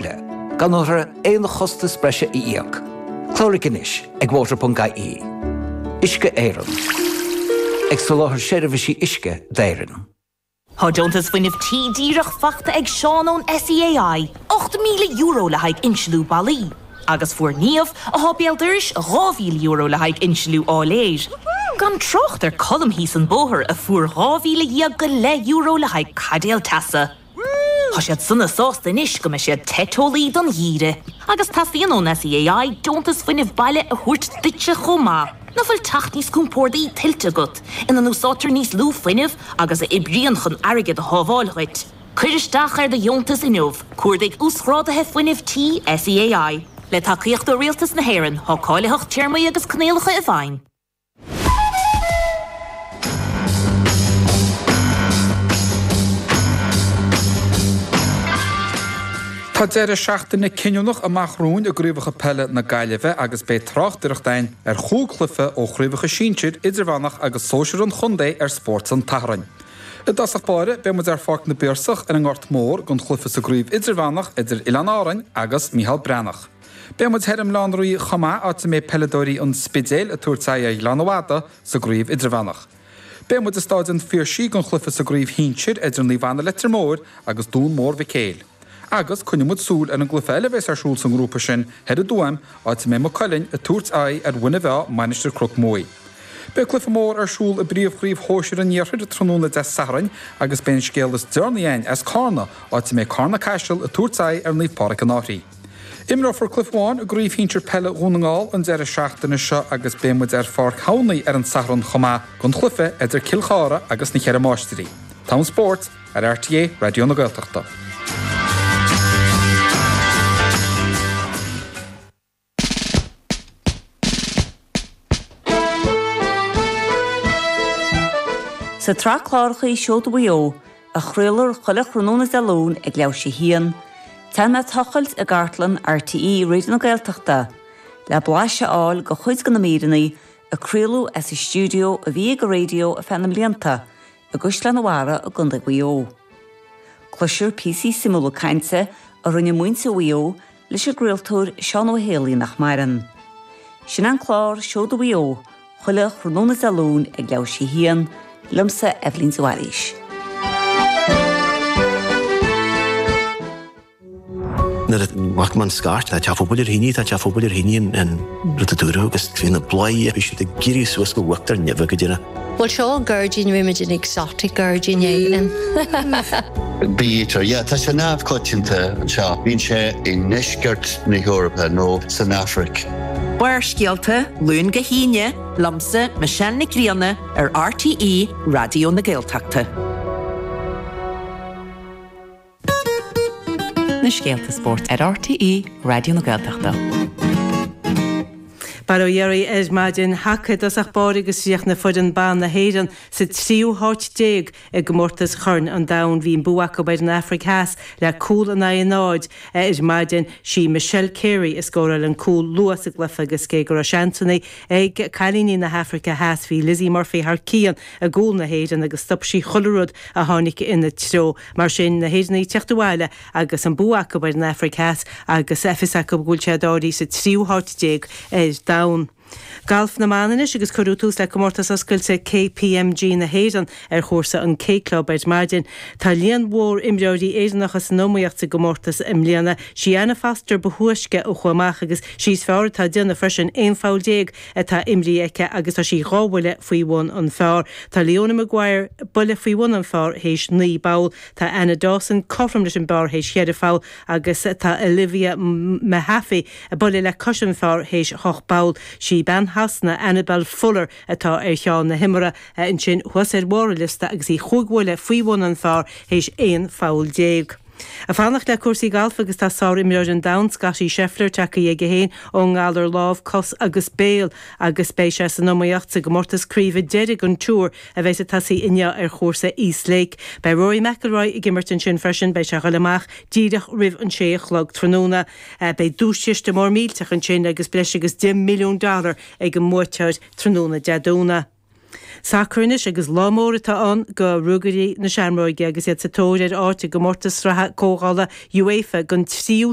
le gan orthu aon chostas breise a íoc. Cláraigh anois ag water.ie. Uisce Éireann, ag soláthar seirbhísí uisce d'Éirinn. Tá deontas fuinnimh tí díreach faighte ag Seán ón SEAI, €8,000 le haghaidh insliú ballaí, agus fuair Niamh, atá béal dorais, €2,000 le haghaidh insliú áiléir, gan trácht ar Colm thíos an bóthar a fuair €12,000 go leith le haghaidh caidéal teasa. Tá siad sona sásta anois go mbeidh siad te teolaí don gheimhreadh agus teastaíonn ón SEAI deontas fuinnimh baile a thabhairt duitse chomh maith. Nach bhfuil teach níos compórdaí tuillte agat, ina n-úsáidtear níos lú fuinnimh agus a oibríonn chun airgead a shábháil dhuit? Cuir isteach ar do dheontas inniu, Cuardaigh Uasghrádaithe Fuinnimh Tí SEAI. Le tacaíocht ó Rialtas na hÉireann, tá cáilitheacht téarmaí agus coinníollacha i bhfeidhm. Tá deireadh seachtaine cinniúnach amach romhainn i gCraobhacha Peile na Gaillimhe agus beidh tráchtaireacht againn ar chúig chluiche ó Chraobhacha Sinsir, Idirmheánach agus Sóisir an chontae ar Spórt an tSathairn. I dtosach báire, beidh muid ar Pháirc na bPiarsach ar an nGort Mór don chluiche sa gCraobh Idirmheánach idir Oileáin Árainn agus Mícheál Breathnach. Beidh muid thoir i mBaile Átha an Rí chomh maith, áit a mbeidh peileadóirí an Spidéil ag tabhairt aghaidh ar Ghleann na Madadh sa gCraobh Idirmheánach. Beidh muid i Staid an Phiarsaigh don chluiche sa gCraobh Shinsir idir Naomh Anna Leitir Móir agus Dún Mór Mhic Éil. Agus coinneoidh muid súil ar an gcluiche eile a bheas ar siúl sa ngrúpa sin thoir i dTuaim, áit a mbeidh Maigh Cuilinn ag tabhairt aghaidh ar Mhuine Mheá Mainistir Chnoc Muaidh. Beidh cluiche mór ar siúl i bpríomhchraobh shóisir an iarthair tráthnóna Dé Sathairn agus beidh an scéal is deirnaí a'ainn as Cárna, áit a mbeidh Cárna-Caiseal ag tabhairt aghaidh ar Naomh Pádraic an Fhairche. Imreofar cluiche amháin i gCraobh Shinsir Peile Dhún na nGall an deireadh seachtaine seo agus beidh muid ar Pháirc Thamhnaigh ar an Satharn chomh maith don chluiche idir Cill Chartha agus na Ceithre Máistrí. Togha an spóirt ar RTÉ Raidió na Gaeltachta. Sa tsraith cláracha Seoda Mhaigh Eo, a chraoltar chuile thráthnóna Dé Luain ag leathuair tar éis a haon, téann mé ag tochailt i gcartlann RTÉ Raidió na Gaeltachta le blaiseadh a fháil de chuid de na míreanna a craoladh as an stiúideo a bhí ag an raidió ar feadh na mblianta i gCaisleán an Bharraigh i gContae Mhaigh Eo. Cloistear píosaí suimiúla cainte a rinne muintir Mhaigh Eo leis an gcraoltóir Seán Ó hÉalaí nach maireann. Sin an clár Seoda Mhaigh Eo chuile thráthnóna Dé Luain ag leathuair tar éis a haon, liomsa, Eibhlín de Bhailís. Nuair a chuaigh amach an scairt, tá teach an phobail ar thine, tá teach an phobail ar thine, an rud a dúradh agus bhí na bladhairí a bhí siad ag éirí suas go buaic tí nimhe go deireadh. Bhuel, seo gairdín, rinne muid an exotic gairdín éigin. Bítear, yeah, tá sé neamhchoitianta anseo. Bíonn sé i ndeisceart na hEorpa nó san Afraic. Barrscéalta, Luan go hAoine, liomsa, Michelle Nic Grianna, ar RTÉ Raidió na Gaeltachta. na scéalta spóirt ar RTÉ Raidió na Gaeltachta. Bail ó Dhia oraibh ar maidin, haca i dtosach báire agus chríochnaigh foireann ban na hÉireann sa tríú háit déag i gcomórtas Chorn an Domhain. Bhí an bua acu ar an Afraic Theas le cúl in aghaidh a náid ar maidin. Sí Michelle Carey a scóráil an cúl luath sa gcluiche agus cé go raibh seansanna ag cailíní na hAfraice Theas, bhí Lizzy Murphy thar cionn. i gcúl na hÉireann agus stop sí chuile rud a tháinig ina treo. Mar sin, na hÉireannaigh ag teacht abhaile agus an bua acu ar an Afraic Theas agus fios acu go bhfuil siad áirithe sa tríú háit déag ar domhan. Galf na mBan anois agus cuireadh tús le Comórtas Oscailte KPMG na hÉireann ar chúrsa an K Club ar maidin. Tá líon mhór imreoirí Éireannacha san iomaíocht sa gcomórtas i mbliana. Sí Anna Foster ba thúisce a chuaigh amach agus sí is fearr atá déanamh freisin, aon pholl déag atá imrithe aici agus tá sí dhá bhuille faoi bhun an pháir. Tá Leona Maguire buille faoi bhun an pháir théis naoi bpoll, tá Anna Dawson cothrom leis an bpár théis cheithre pholl agus tá Olivia Mahaffy buille le cois an pháir théis hocht bpoll. Sí bean Shasana, Annabel Fuller, atá ar cheann na himeartha ansin thuas ar bharr an liosta agus í chúig bhuille faoi bhun an pháir théis aon pholl déag. Ag fanacht le cúrsaí gailf agus tá sárimreoir an domhain, Scottie Scheffler, tagtha aige féin ón ngalar lámh, cos agus béal agus beidh sé san iomaíocht sa gcomórtas craoibhe deiridh an Tour a bheidh ag tosaí inniu ar chúrsa East Lake. Beidh Rory McIlroy ag imirt ansin freisin, beidh sé ag dul amach díreach roimh an sé a chlog tráthnóna. Beidh duaischiste mór millteach ansin agus breis agus deich milliún dollar ag an mbuaiteoir tráthnóna Dé Domhnaigh. Sacar anois agus lá mór atá ann do Ruagairí na Seamróige agus iad sa tóir ar áit i gcomórtas sraithe comhdhála UEFA don tríú